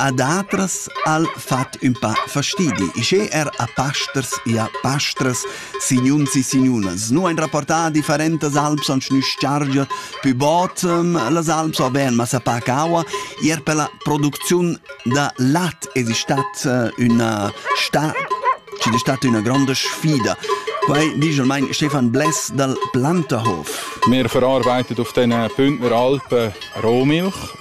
A datras al fat ün pa fastidi. Sche er a pasters e a pastras signuns e signunas nu hain rapportà differentas alps ans nüschargia pü bod las alps o bain massa pac aua, eir per la producziun da lat es istat üna sta chi'd es stat üna gronda sfida. Quai disch almain Stefan Bless dal Planterhof. Wir verarbeiten auf diesen Bündner Alpen Rohmilch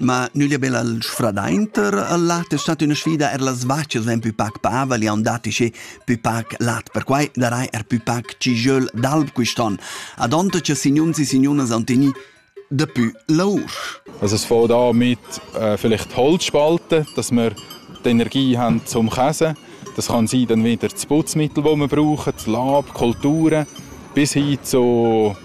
Ma nüglia be al sfradainter al lat es stat üna sfida, eir las vachas vain pü pac pava, le haun dat isché pü pac lat. Perquai darai er pü pac cigiöl d'alb quist'on, adonta cha signuns e signunas haun tegnü dapü lour. Also es fo da mit äh, vielleicht Holzspalten, dass wir die Energie haben zum Käse. Das kann sein dann wieder das Putzmittel, das wir brauchen, das Lab, die Kulturen, bis hin zu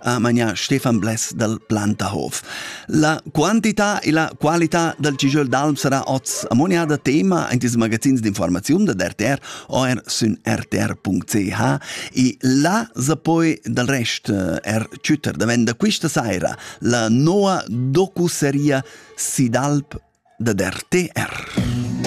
ha manià Stefan Bless dal Plantahof. La quantità e la qualità dal cigöl d'alp sarà oz amoniada tema in ils magazins d'informaziun da RTR o er sün rtr.ch e là sa poi dal rest eh, er chütter da venda quista saira la noa docuseria Sidalp da RTR.